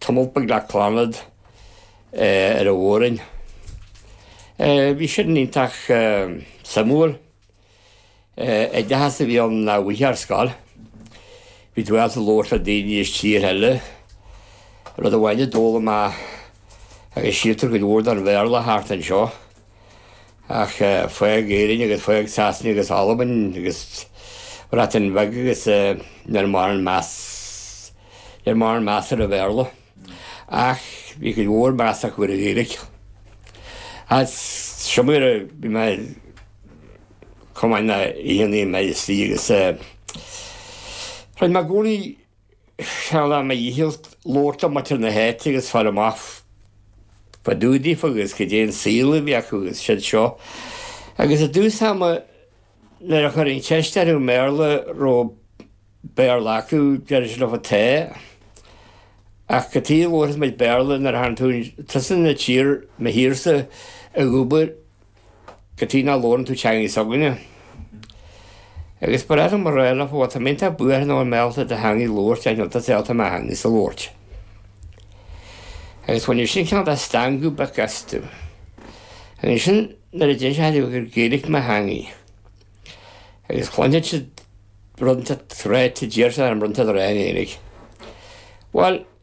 Tiomáint beag le Clannad ar an Mhór-roinn. Bhí sin iontach suimiúil. Oideachas a bhí ann nach bhfaighfeá ar scoil. Bhí tú ábalta labhairt le daoine as tíortha eile. Rud amháin a d'fhoghlaim mé, agus síltear go mór den Bhéarla thart anseo, ach fág Éirinn agus fág Sasana agus Albain agus Bhreatain Bheag agus ní raibh aon mheas ní raibh aon mheas ar an Bhéarla ach bhí cuid mhór measa acu ar an Ghaeilge. Agus so mar bhí mé chomh maith le haon duine measa agus rinne mé gcónaí Dhéanainn mo dhícheall, labhairt le muintir na háite agus fáil amach fá dtaobh díofa agus goidé an saol a bhí acu agus siúd seo. Agus i dtús ama nuair a chuirfinn ceist orthu i mBéarla, raibh Béarla acu, deireadh siad liom tá. Ach cad chuige labhairfeas muid Béarla nuair a thagann tú, tusa inár dtír, mo thírse, ag obair. Go dtí ná labhrann tú teanga s'againne. Agus ba fhreagra mo réir le fo-alt, tá miontach buartha nó an mbeadh alt ar do theanga ag labhairt ar an iontas é alt ar mo theanga's a labhairt. Agus bhaineann sin ceann dá stangadh beic astu. Agus ansin nuair a deineann sé thaithí gur Gaelic mo theangaí, agus cluinfidh siad bronnta tráite, d'iarr siad orm bronnta do rá in Éirigh. Bhuel.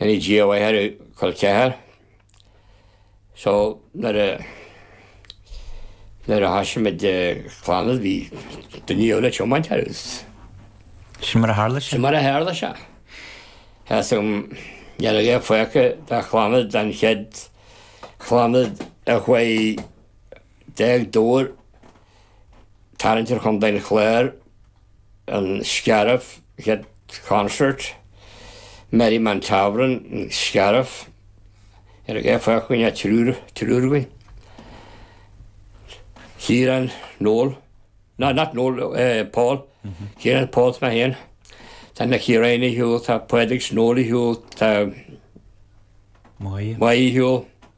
Déanfaidh Dia uaidh ar Col Ceathair. So nuair a nuair a thoisigh muid Clannad bhí duine eile ag tiomáint air agus. Sin mar a tharla sé. Sin mar a tharla sé. An chéad gig a rinne mé do Chlannad den chéad Chlannad naoi déag tour tarraingt ar Chontae an Chláir. an Scairbh, had concert, Merriman Tavern, an Scairbh, níl fágtha againn ach, triúr againn, Ciarán, Noel, no not Noel, Paul, Ciarán, Paul is mé féin, tá Máire ar shiúl, tá Pádraig 's Noel ar shiúl, tá Maidhc ar shiúl.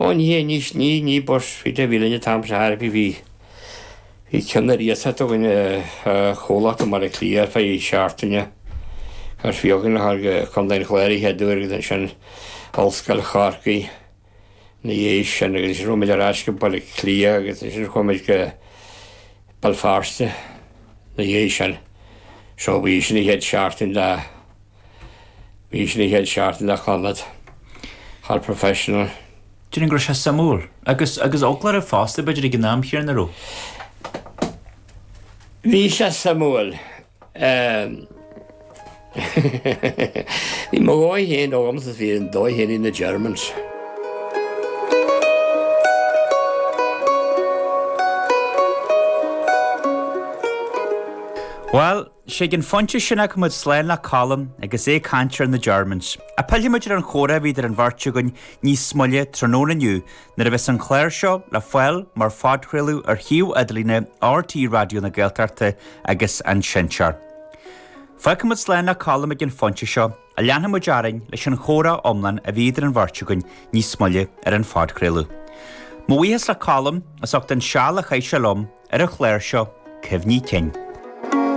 Ó ní hé mini minibus buí a bhí linn an t-am sin bhí bhí ceann ar iasacht againn ó chomhlacht i mbaile cliath fá choinne seachtaine agus bhí againn a ghabháil go contae an chláir an chéad uair agus ansin ollscoil chorcaí ina dhiaidh sin agus ansin chuaigh muid ar ais go baile cliath agus ansin chuaigh muid go béal feirste ina dhiaidh sin so bhí sin an chéad seachtain dá Bhí sin ag Ed Sharton de Chlannad, fear professional. Déarfainn go raibh sé suimiúil. Agus agus foclóra fosta b'fhéidir ag an am chéanna, an raibh? Bhí sé suimiúil. Bhí mo dhóigh féin agamsa is bhí an dóigh féin ag na Germans. Bhuel, 'S ag an phointe sin fágfaidh muid slán le Colm agus é ag caint ar na Germans. Pillfidh muid ar an chomhrá a bhí idir an bheirt againn níos moille tráthnóna inniu nuair a bheas an clár seo le fáil mar phodchraoladh ar shuíomh idirlíne RTÉ Raidió na Gaeltachta agus an Seinnteoir. Fágfaidh muid slán le Colm ag an phointe seo ach leanfaidh muid orainn leis an chomhrá iomlán a bhí idir an bheirt againn níos moille ar an phodchraoladh. Mo bhuíochas le Colm as ucht an seal a chaith sé liom ar an chlár seo, cuimhní cinn.